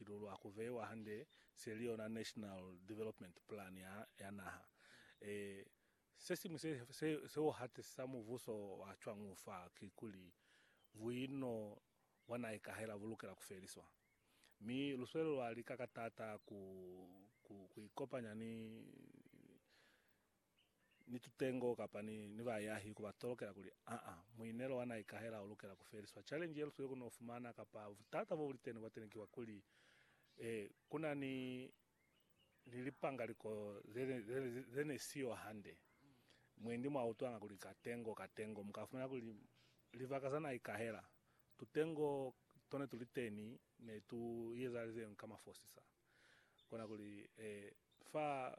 Lulwa ku veiwa hande se li yona National Development Plan ya, ya naha. E, se siñwi se, se, se u hatisisa mubuso wa cwañu fa ki kuli, buino bwa na ikahela bu lukela ku feliswa. Mi lu sweli lwa lika ka taata ku, ku, ku ikopanya ni, ni tutengo kapa ni, ni bayahi ku ba tolokela kuli, Aa, muinelo wa na ikahela u lukela ku feliswa. Challenge ye lu sile ku n'o fumana, kapa butata bo bu li teni bwa teni ki bwa kuli, eh, ku na ni, ni lipangaliko ze, ze, ze ne si yo hande. Mwendi mwa utwanga kuli katengo, katengo, mu ka fumana kuli libaka za na ikahela, tutengo to ne tu li teni ne tu i ezahalize yoñi ka mafosisa. Kona kuli, eh, fa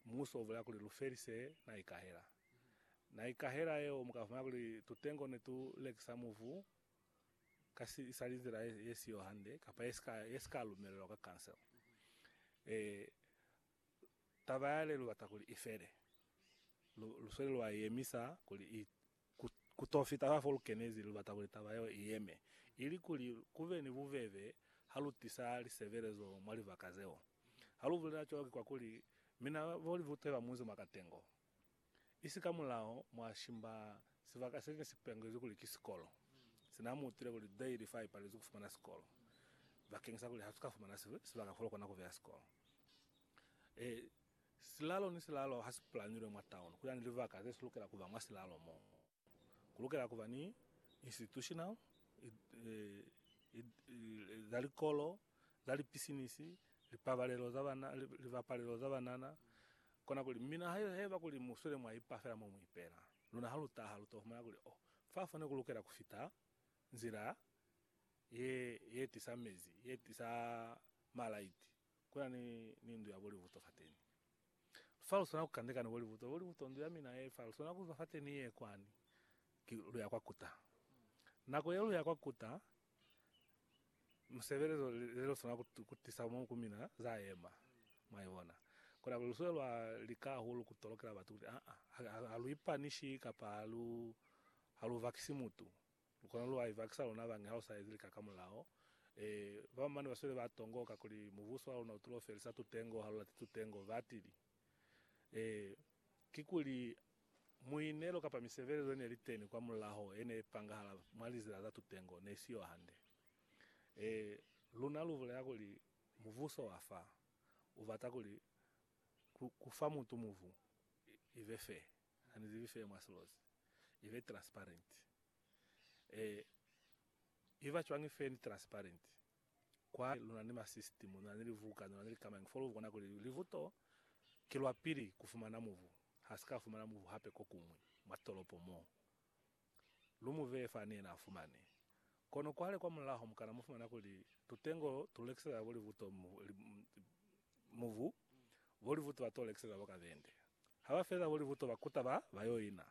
Muuso u bulela kuli lu felise na ikahela. Na ikahela yeo muka fumana kuli tutengo ne tu lekisa muvu ka si isali nzila ye, ye siyo hande kapa ye sika, ye sika lumelelwa ka council. E, taba yale lu bata kuli i fele. Lu, lu sweli lwa i yemisa kuli i, Ku, ku to fita fa fo lu kenezi, lu bata kuli taba yeo i yeme, ili kuli ku be ni bubebe ha lu tisa lisebelezo mwa libaka zeo. Ha lu bulela cwalo ki kwakuli, mina bo libuto ba munzi mwa katengo, isi kamulaho mwa shimba sibaka se ne si pangezwi kuli ki sikolo, sina mu utile kuli Dale fa i palezwi ku fumana sikolo, bakeng sa kuli ha su ka fumana sibaka fo lu kona ku beya sikolo. E, Silalo ni silalo ha si pulanilwe mwa taono, ku na ni libaka ze si lukela ku ba mwa silalo mo ku lukela ku ba ni institutional za likolo, za lipisinisi, lipabalelo za bana, libapalelo za banana. Kona kuli, mina haiba kuli mu swele mwa ipa fela mo mu ipela, luna ha lu taha lu to fumana kuli, oh, fa fo ne ku lukela ku fita nzila ye, ye tisa mezi, ye tisa malaiti. Kuna ni, ni ndu ya bolibuto fateni. Fa luswana kukandeka ni bolibuto, bolibuto, ndu yamina ye fa, luswana kuzwa fateni ye kwani, ki, luya kwa kuta. Nako ye luya kwa kuta, musebelezo le luswana kutisa mo ku mina, za yema. Mwaibona? Kona kuli lusule lwa lika hahulu kutolokela batu kuti, a-a, ha, ha, ha lu ipanishi kapa ha lu, ha lu vakisi mutu. Lukona lu aiva ki sa luna bañi ha u sa ezi lika ka mulao? Ee. Ba bañwi bane ba sweli ba tongo kakuli mubuso wa luna u tulo felisa tutengo ha lu lati tutengo. Batili. Ee. Kikuli, muinelo kapa misebelezo ye ne li teni kwa mulaho ye ne ipangahala mwa lizila za tutengo ne i si yo hande. Ee, luna lu bulela kuli mubuso wa fa u bata kuli ku fa mutu mubu i be fee. Ha ni zibi seo mwa silozi. I be transparent. E i ba cwañi fe ni transparent? Kwa lu na ni ma system, lu na ni livuka, lu na ni likamañi fo lu bona kuli livu to ki lwa pili ku fumana mubu, ha si ka fumana mubu hape ko kuñwi mwa tolopo mo. Lu mu beye fani yena a fumani. Kono kwale kwa mulaho mu kana mu fumana kuli tutengo tu lekisela bo livuto mubu, bo livuto ba to lekisela bo kabende. Ha ba feza bo livuto ba kuta ba ba yo ina.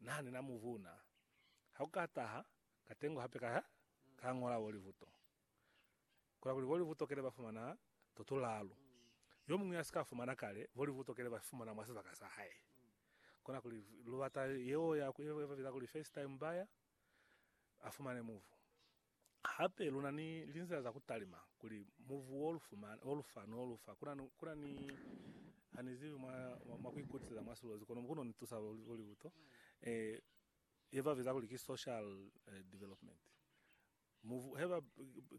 Naha ni na mubu na. Ha ku ka taha katengo hape ka ka ngola bo livuto. Kola kuli volivutokele ba fumana to tulalu. Yo muñwi ya si ka fumana kale, volivutokele ba fumana mwa sibaka sa hae. Kona kuli lu bata yeo ya ku e ba biza kuli first time buyer a fumane muvu. Hape lu na ni linzila za ku talima kuli muvu wo lu fumana, wo lu fa, no lu fa. Kuna, kuna ni, ha ni zibi mwa, mwa ku ikutiseza mwa silozi, kono mukuno ni tusa volivuto. Eh, ye ba biza kuli ki social development. Mu he ba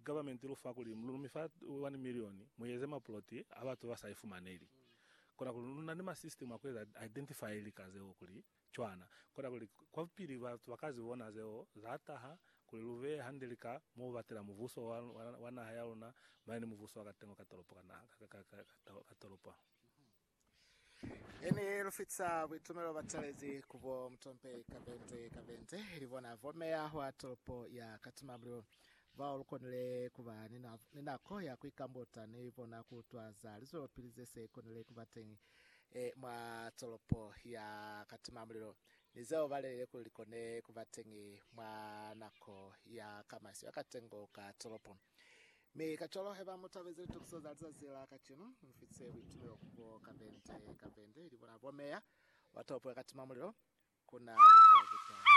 government lu fa kuli lu mi fa 1 million mu eze ma plot a batu ba sa ifumaneli. Kona kuli lu na ni ma system a ku eza identify lika zeo kuli cwana. Kona kuli kwapili batu ba ka zi bona zeo za taha kuli lu beye hande lika mo batela mubuso wa naha ya luna mane ni mubuso wa katengo ka tolopo ka naha ka tolopo. Ini lu fita buitumelo ba talezi ku bo mutompe ka bente ka bente, ili bona bo meya wa tolopo ya Kathmandu, bao lu konile ku ba ni nako ya ku ikambuta ni bona ku utwa za lizwelopili ze se konile ku ba teñi mwa tolopo ya Kathmandu ni zeo ba lelile kuli li kone ku ba teñi mwa nako ya kamasi ya katengo ka tolopo. Mi kacwalo haiba mutabezi litokiso za lizazi la kacenu, mufitise buitumelo kubo kapende kapende, ili bona bomeya batopwe katima mulilo, kuna lilifo kuca kene.